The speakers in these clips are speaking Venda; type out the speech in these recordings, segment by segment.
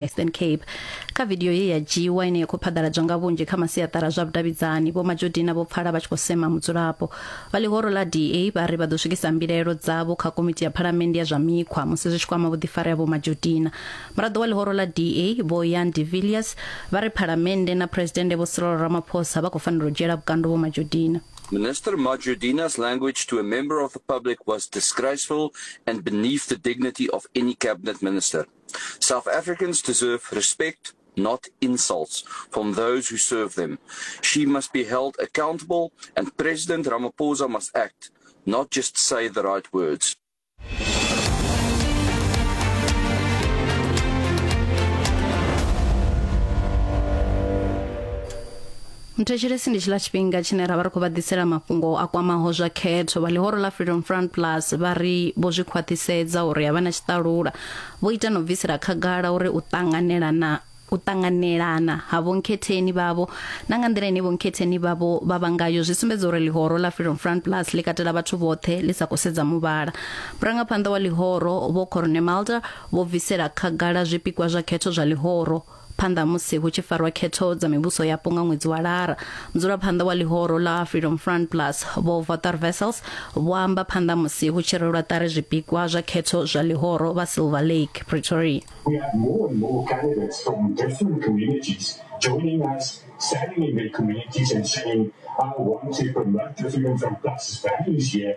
eastern cape kha vidio ye ya dzhiiwa ine ya khou phaḓaladzwa nga vhunzhi kha masiaṱara zwa vhudavhidzani vho majodina vho pfala vha tshi khou sema mudzulapo vha ḽihoro ḽa da vha ri vha ḓo swikisa mbilaelo dzavho kha komiti ya phalamennde ya zwa mikhwa musi zwi tshi kwama vhuḓifari ha vho majodina muraḓo wa ḽihoro ḽa da vho yan de villiers vha ri phalamennde na phuresidennde vho sirolo ramaphosa vha khou fanela u dzhiela vhukando vho majodina Minister Majudina's language to a member of the public was disgraceful and beneath the dignity of any cabinet minister. South Africans deserve respect, not insults, from those who serve them. She must be held accountable, and President Ramaphosa must act, not just say the right words. mthetshelesi ndi tshila tshifhinga tshine ra vha ri khou vha ḓisela mafhungo a kwamaho zwa khetho vha ḽihoro ḽa freedom front plus vha ri vho zwi khwaṱhisedza uri a vha na tshiṱalula Vho ita na u bvisela khagala uri u ṱanganelana u ṱanganelana ha vhonkhetheni vhavho na nga nḓila ine vhonkhetheni vhavho vha vha ngayo zwi sumbedza uri ḽihoro ḽa Freedom Front Plus ḽi katela vhathu vhoṱhe ḽi sa khou sedza muvhala. Murangaphanḓa wa ḽihoro Vho Corne Mulder vho bvisela khagala zwipikwa zwa khetho zwa ḽihoro. Phanḓa ha musi hu tshi farwa khetho dza mivhuso yapo nga ṅwedzi wa Lara, mudzulaphanḓa wa ḽihoro ḽa Freedom Front Plus, Vho Vothar Wessels, vho amba phanḓa musi hu tshi rwelwa ṱari zwipikwa zwa khetho zwa ḽihoro vha Silver Lake, Pretoria. We had more and more candidates from different communities joining us, standing in their communities and saying, I want to promote the Freedom Front Plus's values here.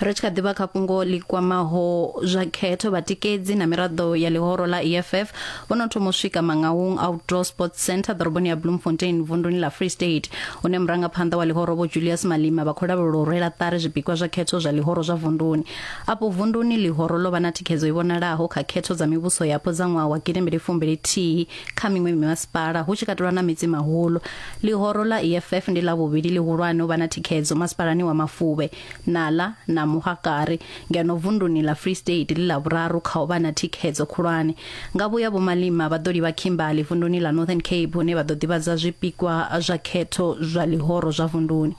ri tshi kha ḓivha kha fhungo ḽi kwamaho zwa khetho vhatikedzi na miraḓo ya ḽihoro ḽa EFF vho no thoma u swika Mangaung Outdoor Sports Centre ḓoroboni ya Bloemfontein vunduni ḽa Free State hune murangaphanḓa wa ḽihoro vho Julius Malima vha khou lavhelelwa u rwela ṱari zwipikwa zwa khetho zwa ḽihoro zwa vunduni afho vunduni ḽihoro ḽo vha na thikhedzo i vhonalaho kha khetho dza mivhuso yapo dza ṅwaha wa gidi mbili fumbili thihi Kha miṅwe mimasipala, hu tshi katelwa na Metsimaholo, ḽihoro ḽa EFF ndi ḽa vhuvhili ḽihulwane u vha na thikhedzo masipalani wa Mafuvhe, Nala na Mohakari, ngeno vunduni ḽa Free State ḽi ḽa vhuraru kha u vha na thikhedzo khulwane. Nga vhuya Vho Malema vha ḓo livha Kimberley vunduni ḽa Northern Cape hune vha ḓo ḓivhadza zwipikwa zwa khetho zwa ḽihoro zwa vunduni.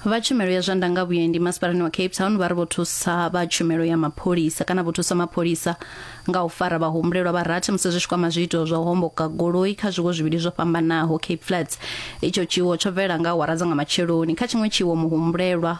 vha tshumelo ya zwa ndanga vhuendi masipalani wa cape town vha ri vho thusa vha tshumelo ya mapholisa kana vho thusa mapholisa nga u fara vhahumbulelwa vha rathi musi zwi tshi kwama zwiito zwa u homboka goloi kha zwiwo zwivhili zwo fhambanaho cape flats itsho tshiwo tsho bvela nga awara dza nga matsheloni kha tshiṅwe tshiwo muhumbulelwa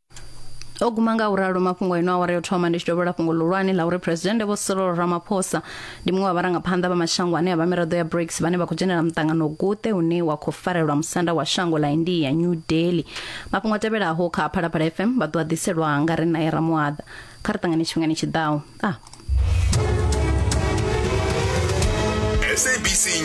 o guma nga u ralo mafhungo eno awara yo thoma ndi tshi dovhela fhungo ḽihulwane ḽa uri phuresidennde vho Cyril Ramaphosa ndi muṅwe wa vharangaphanḓa vha mashango ane a vha miraḓo ya BRICS vhane vha khou dzhenela muṱangano guṱe une wa khou farelwa musanda wa shango ḽa India New Delhi mafhungo a tevhelaho kha Phalaphala FM vha ḓo a ḓiselwa nga ri nae Ramuaḓa kha ri ṱangane tshifhingani tshiḓaho ah. SABC News.